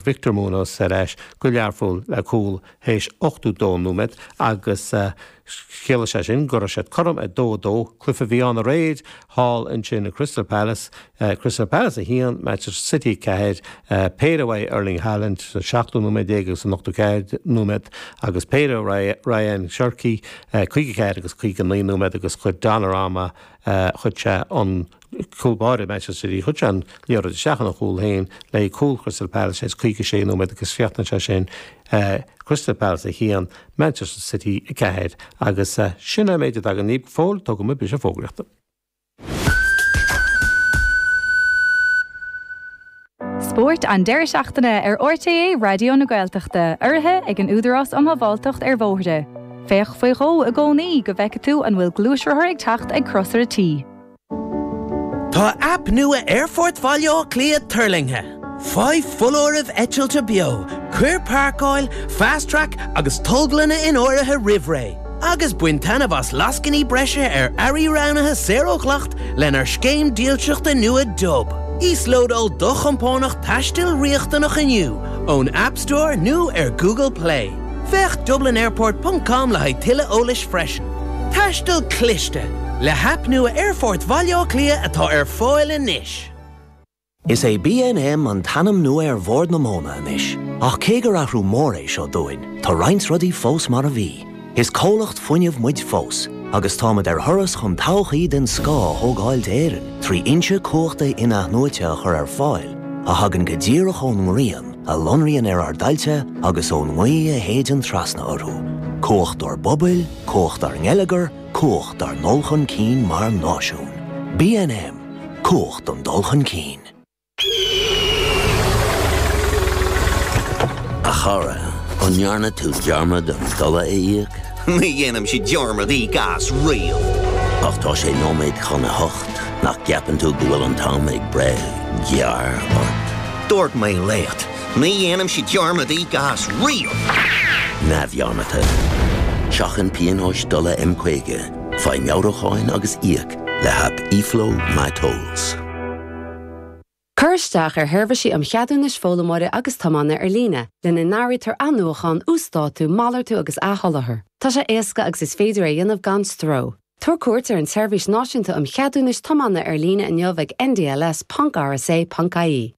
Victor Muñoz ar ais go Learpholl le cúl th'éis 82 nóiméad agus chiallaigh sé sin go raibh siad cothrom ag dó a dó. Cluiche a bhí ann aréir thall ansin i Crystal Palace, Crystal Palace 1, Manchester City 4. Péire uaidh Erling Haaland sa seachtú nóiméad déag agus an ochtó ceathair nóiméad agus péire ag Rayan Cherki, caoga ceathair agus caoga naoi nóiméad agus chuir Donnarumma chuir sé an cúl báire Manchester City. chuir sé an liathróid isteach ina chúl féin le cúl Crystal Palace ins 56 nóiméad agus chríochnaigh sé sin Crystal Palace 1, Manchester City 4 agus sin an méid atá againn go fóill. Tógfaidh muid briseadh fógraíochta. Spórt an deireadh seachtaine ar RTÉ Raidió na Gaeltachta, urraithe ag an Údarás um Shábháilteacht ar Bhóithre. Féach faoi dhó i gcónaí go bhfeicfidh tú an bhfuil gluaisrothar ag teacht ag crosaire T. Tá aip nua Aerfort Bhaile Átha Cliath tuirlingthe! Faigh foláirimh eitilte beo, cuir páirceáil, Fast Track agus tolglanna in áirithe roimh ré. agus bain taitneamh as lascainí breise ar earraí roghnaithe saor ó dhleacht lenár scéim dílseachta nua Dub. Íoslódáil do chompánach taistil riachtanach inniu ón App Store nó ar Google Play. Féach dublinairport ponc com le haghaidh tuilleadh eolais freisin. Taisteal cliste, le haip nua Aerfort Bhaile Átha Cliath atá ar fáil anois! Is é BNM an t-ainm nua ar Bhord na Móna anois, ach cé gur athrú mór é seo dúinn, tá roinnt rudaí fós mar a bhí. Is comhlacht fuinnimh muid fós, agus táimid ar thuras chun todhchaí den scoth a thógáil d'Éirinn trí fhoinse cumhachta in-athnuaite a chur ar fáil a thagann go díreach ón ngrian a lonraíonn ar ár dtailte agus ón ngaoth a shéideann trasna orthu. Cumhacht ár bpobail, cumhacht ár ngeilleagar, Cumhacht ár ndul chun cinn mar náisiún. BNM, Cumhacht an dul chun cinn. A chara, an ndearna tú dearmad an dola a íoc? Ní dhéanaimse dearmad íoc as riamh. Ach tá sé nóiméad chun a hocht, nach gceapann tú go bhfuil an t-am ag breith gearr ort? Dúirt mé leat. Ní dhéanaimse dearmad íoc as riamh. Neamhdhearmadta. Seachain pionóis dola M50, faigh meabhrúcháin agus íoc le haip eFlow MyTolls. Cuir isteach ar Sheirbhísí um Cheadúnais Foghlaimeora agus Tiomána Ar Líne, lena n-áirítear athnuachán, uasdátú, malartú agus athsholáthar. Tá sé éasca agus is féidir é a dhéanamh gan stró. Tabhair cuairt ar an tSeirbhís Náisiúnta um Cheadúnais Tiomána Ar Líne inniu ag ndls ponc rsa ponc ie.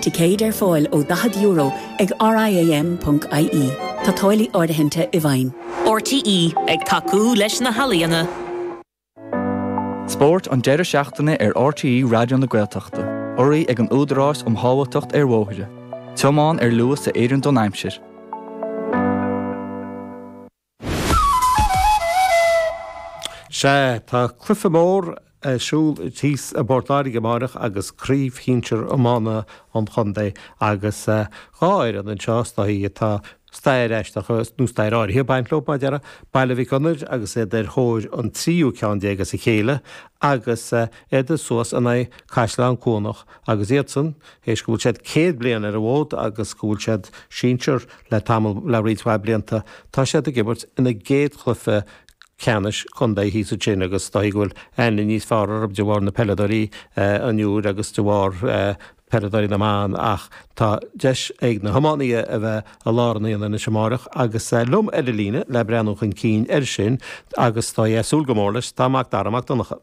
Ticéid ar fáil ó €40 ag RIAM.ie. Tá táillí áirithinte i bhfeidhm. RTÉ ag tacú leis na healaíona. Spórt an deireadh seachtaine ar RTÉ Raidió na Gaeltachta. Urraithe ag an Údarás um Shábháilteacht ar Bhóithre. Tiomáin ar luas a oireann don aimsir. Sea, tá cluiche mór ar siúl thíos i bPort Láirge amárach agus craobh shinsir iomána an chontae agus dhá fhoireann anseo is dóichí atá stair aisteach, nó stair áirithe, ag baint leo, mar a déarfá, Baile Mhic Gonair agus iad ar thóir an tríú ceann déag as a chéile agus iad suas in aghaidh Caisleán Cuanach agus iadsan, théis go bhfuil siad céad bliain ar an bhfód agus go bhfuil siad sinsear, Le tamall le roinnt mhaith blianta, tá siad ag imirt ina gcéad chluiche ceannais chontae thíos ansin agus is dóichí go bhfuil aithne níos fearr orthu de bharr na peileadóirí an Uidhir agus de bharr peileadóirí na mban ach tá deis ag na hiománaí a bheith i lár an aonaigh anois amárach agus liom ar an líne le breathnú chun cinn air sin agus tá sé ag súil go mór leis, tá Mac Dara Mac Donncha.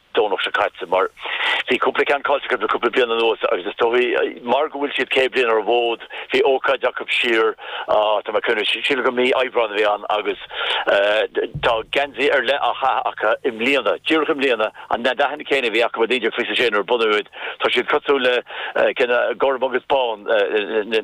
Domhnach seo caite, mar bhí cúpla ceann caillte acu le cúpla bliain anuas agus is dóigh, mar go bhfuil siad 100 bliain ar an bhfód, bhí ócáid acu siar, tá mé ag cuimhneamh, sílim gur mí Aibreáin a bhí ann agus tá geansaí ar leith á chaitheamh acu i mbliana, díreach i mbliana, an, na dathanna céanna a bhí acu i 1926 nuair a bunaíodh iad. Tá siad cosúil le, gorm agus bán, na.